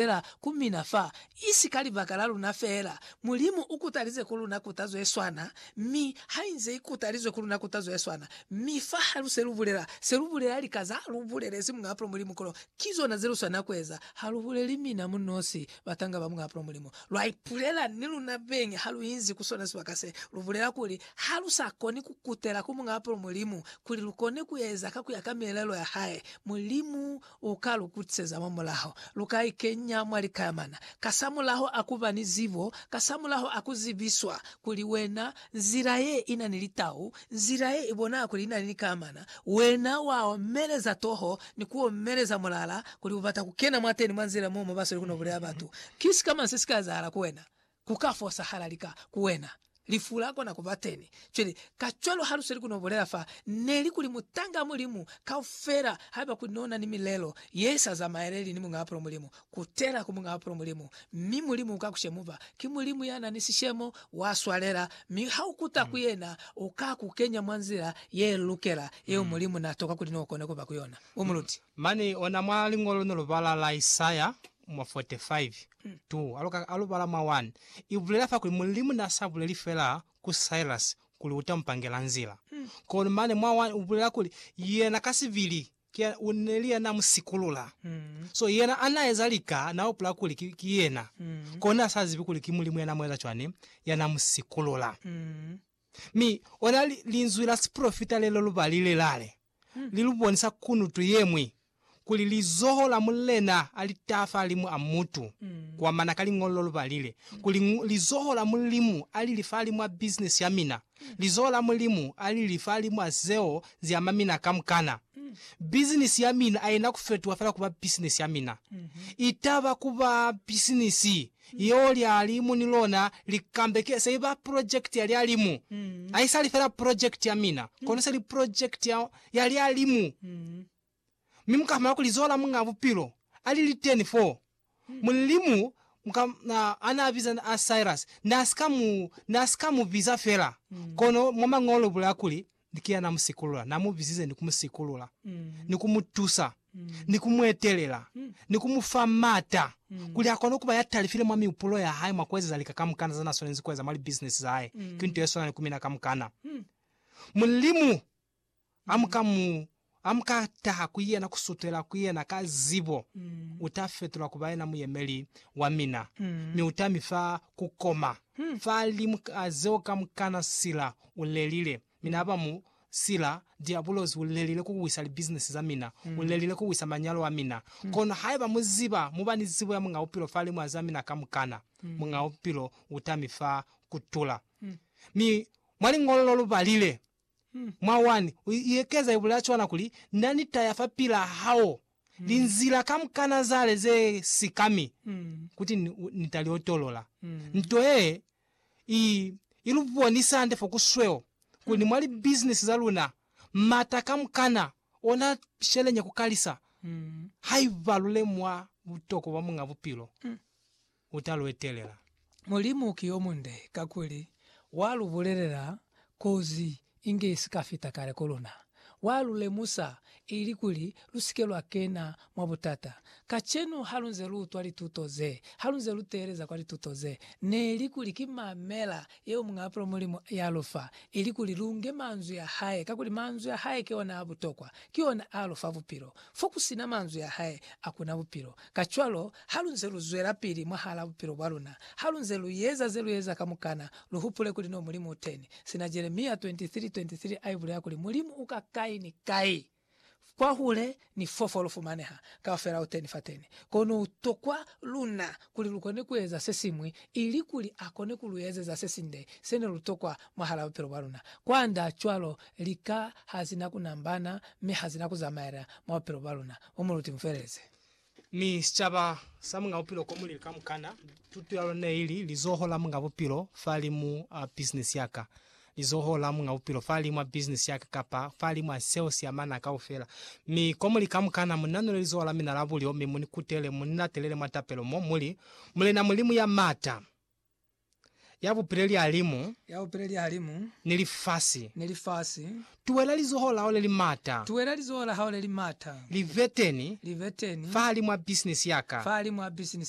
feela ku mina fa, isi ka libaka la luna feela. Mulimu u kutalize ku luna kutazo ye swana, mi hainze i kutalizwe ku luna kutazo ye swana. Mi fa ha lu se lu bulela se lu bulela, lika za lu bulelezi Muñ'a Apulo Mulimu kono ki zona ze lu swanela ku eza. Ha lu buleli mina mu nosi, batanga ba Muñ'a Apulo Mulimu. Lwa ipulela ni luna beñi ha lu inzi ku sona sibaka se. Lu bulela kuli, Ha lu sa koni ku kutela ku Muñ'a Apulo Mulimu kuli lu kone ku eza ka ku ya ka mielelo ya hae, Mulimu U ka lu kutiseza mwa mulaho. Lu ka i kenya mwa likayamana, kasamulaho a ku ba ni zibo, kasamulaho a ku zibiswa kuli wena nzila ye i na ni litau, nzila ye i bonaa kuli i na ni likayamana, wena wa omeleza toho ni ku omeleza mulala kuli u bata ku kena mwateni mwa nzila mo mo ba sweli ku no bulea batu. Ki sikamañi se si ka ezahala ku wena? Ku ka fosahala lika ku wena. Lifu la kona ku ba teni. Cwale, kacwalo ha lu sweli ku no bulela fa, ne li kuli mutanga Mulimu kaufela, haiba kuli no na ni milelo ye sa zamaeleli ni Muñaa Pulo Mulimu, kutela ku Muñaa Pulo Mulimu, mi Mulimu uka ku shemuba. Ki Mulimu ya na ni sishemo, wa swalela, mi ha u kuta ku Yena, U ka ku kenya mwa nzila ye lukela, yeo Mulimu na toka kuli no kone ku ba ku yona. U muluti. Mane ona mwa Liñolo ne lu bala la Isaya, mwa 45 tu aluka alu bala mwa 1, i bulela fa kuli Mulimu na sa buleli fela ku Silas kuli uta mu pangela nzila, kono mane mwa 1 ubulela kuli yena ka sibili ki neli yana mu sikulula. So yena ana eza lika na hupula kuli ki, ki yena, kona na sa zibi kuli ki Mulimu yana mueza cwani yana mu sikulula. Mi ona li, linzwi la sipolofita lelo lu balile, lale. li lu bonisa kunutu ye ñwi, kuli lizoho la Mulena a li taha fahalimu a mutu, kuamana ka liñolo lu balile, kuli, Lizoho la Mulimu a li li fahalimu a bisinesi ya mina, lizoho la Mulimu a li li fahalimu a zeo zi ama mina kamukana. Bisinesi ya mina a i na ku fetuha fela ku ba bisinesi ya mina. I taba ku ba bisinesi Yeo lyali mu ni lona likambeke se iba project ya lyalimu. Haisali fela project ya mina, kono seli project ya, ya lyalimu. Mi muka fumana kuli Zola Muñaa Bupilo ali liteni foo. Mulimu muka, na, ana biza na a Cyrus, na sika mu, na sika mu biza fela, kono mwa Mañolo ubulaya kuli, ni kina na mu sikulula, na mu bizize ni ku mu sikulula, ni ku mu tusa, ni ku mu etelela, ni ku mu fa m'ata kuli a kone ku ba ya talifile mwa mihupulo ya hae mwa ku ezeza lika kamukana za na swanezi ku eza mwa libisinesi za hae, ki nto ye swana ni ku mina kamukana. Mulimu a mu ka mu Ha mu ka taha ku yena ku sutela ku yena ka zibo, u ta fetulwa ku ba yena muyemeli wa mina, mi u ta mi fa ku koma. Fa limu a zeo kamukana sila u lelile, mina aba mu sila, Diabulosi u lelile ku wisa libisinisi za mina, u lelile ku wisa manyalo a mina. Kono haiba mu ziba, mu ba ni zibo ya Muñ'a Bupilo fa limu a za mina kamukana, Muñ'a Bupilo u ta mi fa ku tula. Mi mwa liñolo lo lu balile, Mwa 1, u iekeza ibulaa cwana kuli, Na ni taya fa pila hao linzila kamukana zale ze sikami kuti ni, ni ta li otolola. Nto yee i, i lu bonisa hande fo ku sweo kuli mwa libizinisi za luna m'ata kamukana ona sheleña ku kalisa haiba lu lemuha butokwa bwa Muñ'a Bupilo. u ta lu etelela. Mulimu ki yo munde kakuli wa lu bulelela kozi inge i si ka fita kale ku luna. Wa lu lemusa ili kuli lu si ke lwa kena mwa butata. Kacenu ha lu nze lu utwa lituto ze, ha lu nze lu teeleza kwa lituto ze, ne li kuli ki mamela yeo Muñ'a Bupilo Mulimu ya lu fa, ili kuli lu nge manzwi a hae, kakuli manzwi a hae ki ona a butokwa, ki ona a lu fa bupilo. Fo ku si na manzwi a hae, a ku na bupilo. Kacwalo, Halunze luzwelapili mwahalaa bupilo bwaluna, halunze lueza zelueza kamukana, luhupule kuli no Mulimu uteni. Sina Jeremia 23:23 aibulela kuli Mulimu uka kai ni kai, kwahule ni fofo lufumaneha, kaufela uteni fateni. Kono utokwa luna kuli lukone kueza sesiñwi ilikuli akone kuluezeza sesinde sene lutokwa mwahalaa bupilo bwaluna. Kwanda cwalo, lika hazina kunambana mi hazina kuzamaela mwa bupilo bwaluna. Bo muluti, mufeleleze. Mi sicaba sa Muñ'a Bupilo ko mulili kamukana. Tuto ya lona neili Lizoho la Muñ'a Bupilo Fahalimu a Bisinisi ya Ka. Lizoho la Muñ'a Bupilo Fahalimu a Bisinisi ya Ka kapa Fahalimu a Seo si Amana Kaufela. Mi komuli kamukana, mu nanule lizoho la mina la bulyo, mi mu ni kutele, mu ni latelele mwa tapelo mo, mu li, Mulena Mulimu ya M'ata! ya bupile lihalimu ya bupile lihalimu ni lifasi. ni lifasi. Tuwela lizoho la hao le li mata. Tuwela lizoho la hao le li mata. Liveteni. Liveteni. fahalimw'a bisinisi ya ka. fahalimw'a bisinisi.